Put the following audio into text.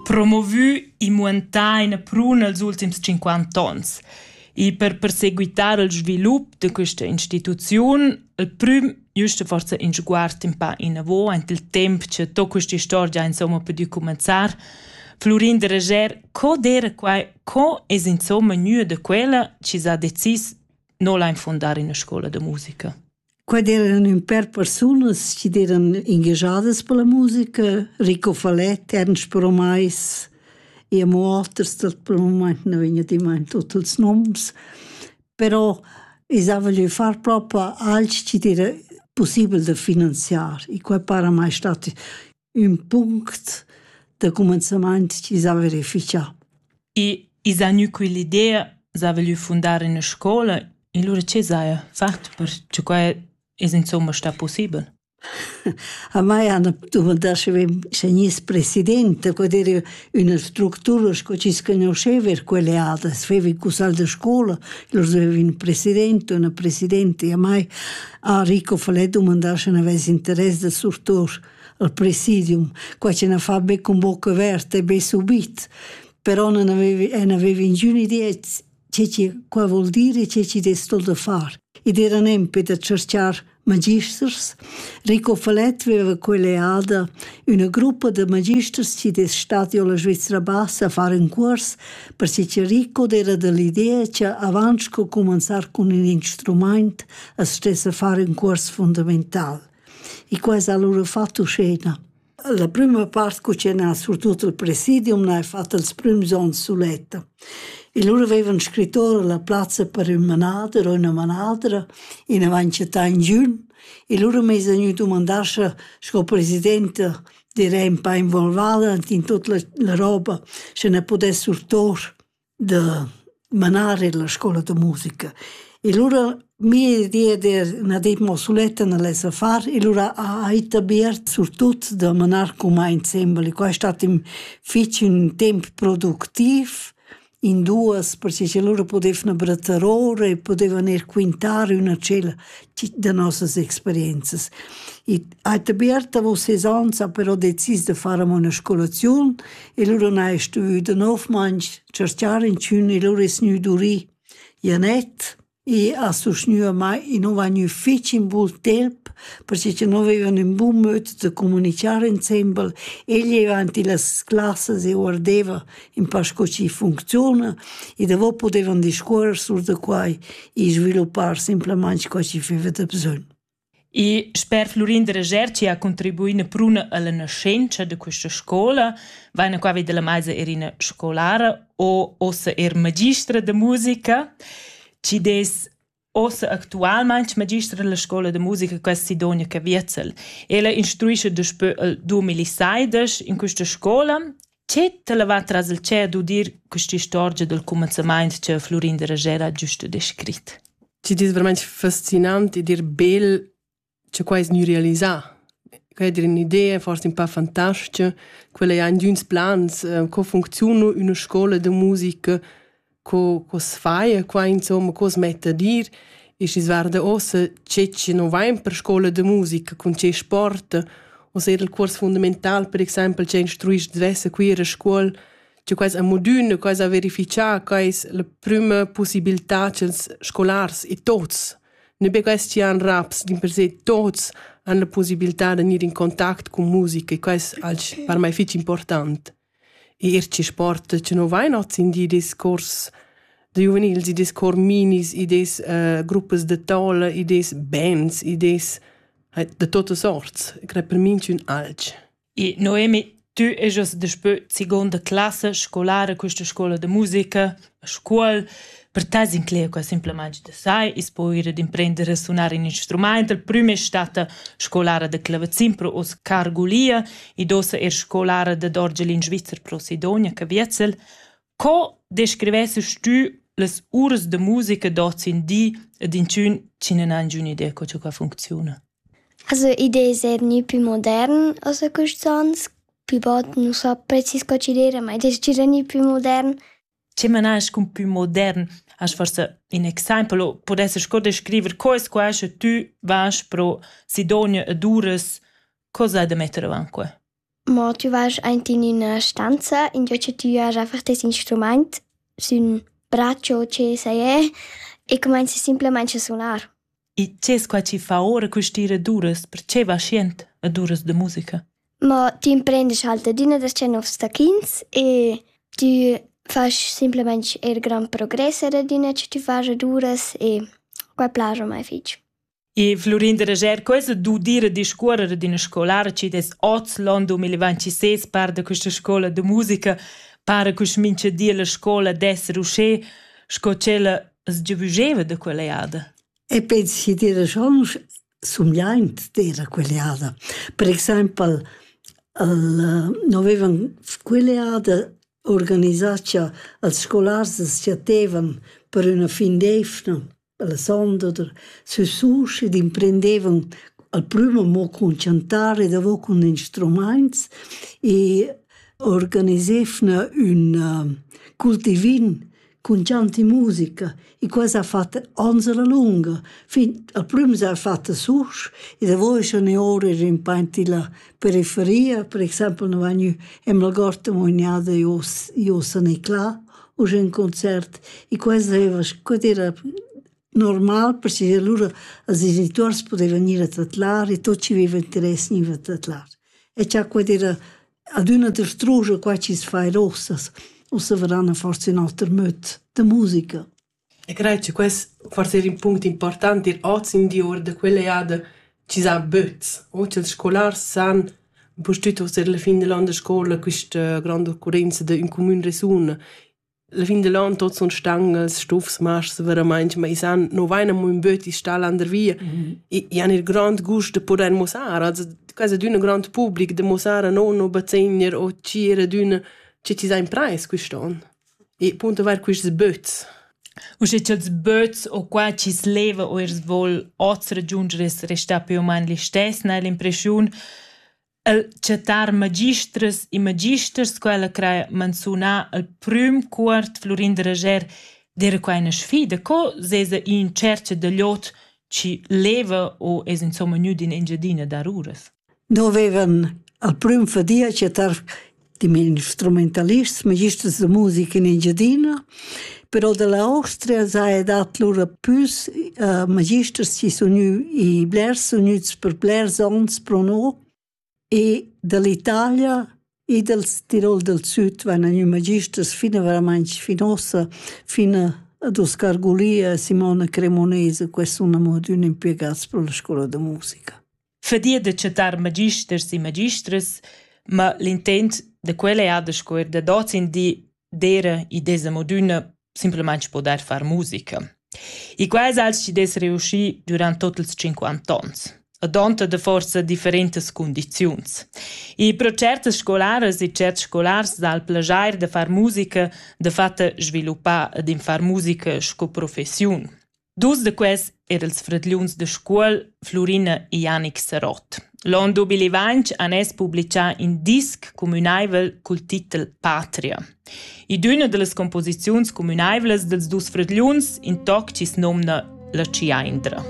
Promovü e muantà ina prun els ultims cinquanta ons. E per perseguitar il svilup da questa instituziun, il prüm giusta forsa in sguard in pa inavò ant il temp cha to quest'istorgia insomma pudü cumanzar, Florin de Reger, co d'era quai, co es insomma gnü da quella chi s'ha decis no la infondar in una scola da musica? Quai d'eran ün pêr persunas chi d'eran ingagiadas per la musica, Rico Falett, Ernst Bromais e amo oters dal pel mumaint nu vegn adimmaint ho tuots noms, però i zava lö far propa alch chi d'era pussibel da finanziar, i quai para mai stat ün punct da cumenzamaint chi s'ha verifichà. E i s'ha gnü quell'idea s'ha voglü fundar üna scoula e lura che s'haja fat per che quai es insomma stà possibel? A mai hanno dumandà sche gness presidente, quod era üna structura sco chi sconosceva er quelle adas, veva i cusal de scola, lur aveva un presidente, una presidente, e a mai a Rico Falè dumandà sche n'avess interess da surtur. al presidium, quai che na fa be cun boca averta e be subit, però non avevi, en avevi ingün idea ce che qua vuol dire e ce ci destul da far. Ed era nempe da cercar magisters. Rico Falet aveva quell'eada una gruppa de magisters ci des stati alla Svizzera Bassa a fare un curs perché che Rico era dell'idea che avanti co cominciar con un instrument a stessa fare un curs fondamentale. E qua es alura fat uschena. La prüma part cu chen ha surtut il presidium n'ha fat ils prüms ons suletta. E lura veivan scrit ora la plazza per ün manader o üna manadra in avant che tà in giün e lura m'esa gnü dumandà scha sco presidenta direi ün pa involvada ant in tut la la roba, scha ne pudess surtour. da manar illa scoula da musica e lura mia idea d'er üna di mo suletta nel esser far e lura ha ita Beat surtut da manar cumà insembel e quai è stat ün fich ün temp productiv in duos perche cha lura pudevna brettar ora e pudevan eir quintar üna tschella da nossas experienzas. ha dabert davos ses onns ha però decis da far amo üna scolaziun e lura n'ha el stuvü danovmainch tscherchar inchün e lura es gnü durì. Janett e ha sustgnü a mai e nu va gnü fich in bun temp perche cha no vevan ün bun möd da comunichar insembel. El jeva ant illas classas e guardeva ün pa sco chi funcziuna e davo pudevan discuorrer sur da quai e sviluppar simplamaing co chi feva da bsögn. E sper Flurin Reger chi ha contribuì üna pruna illa naschentscha da quista scoula, vaina qua vi da la maisa eir üna scolara o uossa eir magistra da musica chi'd es uossa actualmaing magistra illa scoula da musica quest Sidonia Caviezel. Ella instruescha daspö il dumilaseidesch in quista scoula Che t'ha levà tras il tschep d'udir quest'istorgia dal cumenzamaint cha Flurin da Ragera ha giusto descrit? Ti dis vermaint fascinant e dir bel cha quai es gnü realisà. Quai è dir ün'idea forse ün pa fantastica. Quella è ün d'üns plans, co funcziuna üna scoula da musica co, co se fa e qua insomma cosa mette a dir e si guarda ossa che ci non va in per scuola de musica con che sport o se il curs fundamental per exempel che instruisci diverse qui a scuola che quais a modune, quais a verificar, quais la prima possibilità che scolars e tots, ne be quais ci han raps, din per se tots han la possibilità de venire in contact con musica e quais al per me fece importante. Eir chi sporta chi nu vain hoz in di discuors da giuvenils, i dess corminis, i dess gruppas da toula, i dess bands, i dess da tuotta sorts. E crei per minchün alch. I Noemi, tü ejast daspö segonda classa scolara quista scoula da musica. A scuol per te s'inclegia quai simplamaing da sai. I's po ir ad imprender a sunar ün instrumaint. La prüma es statta scolara da clavazin pro hoz Cargulia. Id ossa eir scolara dad orgel in Svizzer pro Sidonia, Caviezel. Co descrivesses tü las uras da musica d'hoz in di ed inchün chi nun ha ingün'idea co cha qua funcziuna? Also, id es eir gnü pü modern ossa custs ons Pü bod nu so precis co ci dire, ma i es gira gnü pü modern. Che manast cun pü modern? Hast forsa ün exaimpel o pudesses co descriver co es quai sche tü vas pro Sidonia ed uras? Co sai da metter avant que? Mo tü vas aint in üna stanza, ingio che tü has einfach tes instrumaint, sün braccio o che sai e, e cumainzi simplamaing a sunar. E tgès quai chi fa ora quist'ira ed uras, perche vaschient ed uras da musica? Ma ti imprendisch halt adüna da che novs tacchins e tü fasch simplamaing eir grand progress er adüna che tü fas ed uras e quai plaja mai fich. E Florin de Reger, questa d'udire discuorre d'ina scolara ci des oz l'on 2026 par da questa scola de musica, para quest mincha di la scola d'esser uscè, sco ch'ella as giavüscheva da quell'eada? E pens chi d'eira schonch sumgliaint d'eira quell'eada. Per exaimpel el no avevan quell'eada organisà cha els scolars as chattevan per üna fin d'eivna la sonda oder sü sus ed imprendevan al prüm amo cun chantar e davo cun instrumaints e organisevna ün cultivin cun gianti musica e quai s'ha fat ons la lunga fin al prüm s'ha fat susch e da voi schon e ora er in painti la periferia per exaimpel nu vagn ü amo la Gorta mognada jo jo san e cla u ün concert e quai deva scu dire normal perché alura als genituors pudevan gnir a tadlar e tot chi veva interess gniva a tadlar e cha quai era adüna destruja quai chi's fa eir uossas. Ussa varan a forsa ün oter möd da musica. E crei che quest forse er in punct important ir oz in di ord da quella jada ci sa böts. Oggi els scolars san pustüt oser la fin dell'an da scola questa grande occorrenza da ün cumün resun La fin da l'on tuot sun stangas, stufs, mascs veramaing, ma i san no vain amo ün böt, i's sta landervia. I han il grand gust da pudair mussar, also quasi d'ün grand public da mussar a non o bazegner o tgir ad ün che chi s'ha imprais quist'on. E appunto vair quists böts. Usche cha'ls böts o qua chi's leva o eir s'vol hoz ragiunger es restà pü o man listess, n'hai l'impreschiun El chattar magistras e magisters, quella crai manzunà al prüm cuort Flurin da Rajer d'eira quai üna sfida. Co s'esa ì in tschercha da lod chi leva o es insomma gnüd in Engiadina dar uras? No vevan al prüm fadia chattar dem instrumentalists, magisters de musica in Engiadina. Però dall'Austria sei dat lura pus uh, magisters chi sun i blers sun gnüts per blers ons pro no e dall'Italia e dal Tirol dal Süd van i magisters fina verament finosa, fina ad Oscar Gulia e Simona Cremonese, questo è un amore di un impiegato per la scuola di musica. fadia da chattar magisters e magistras, ma l'intent da quella è da scuer dad oz in di d'eira id es amo d'üna simplamaing podair far musica. E quai es als chi dess reuschi durant tot ils cinquant ons. Adonta da forsa differentas cundiziuns. E pro certas scolaras e certs scolars dà il plajair da far musica da fatta sviluppà ed in far musica sco professiun. Dus da quels eran ils fradgliuns da Scuol, Flurina e Janic Sarott. L'on 2020 han els publicà in disc cumünaivel cul titel Patria. I d'üna da las composiziuns cumünaivlas dels dus fradgliuns, in toc chi's nomna La Ciaindra.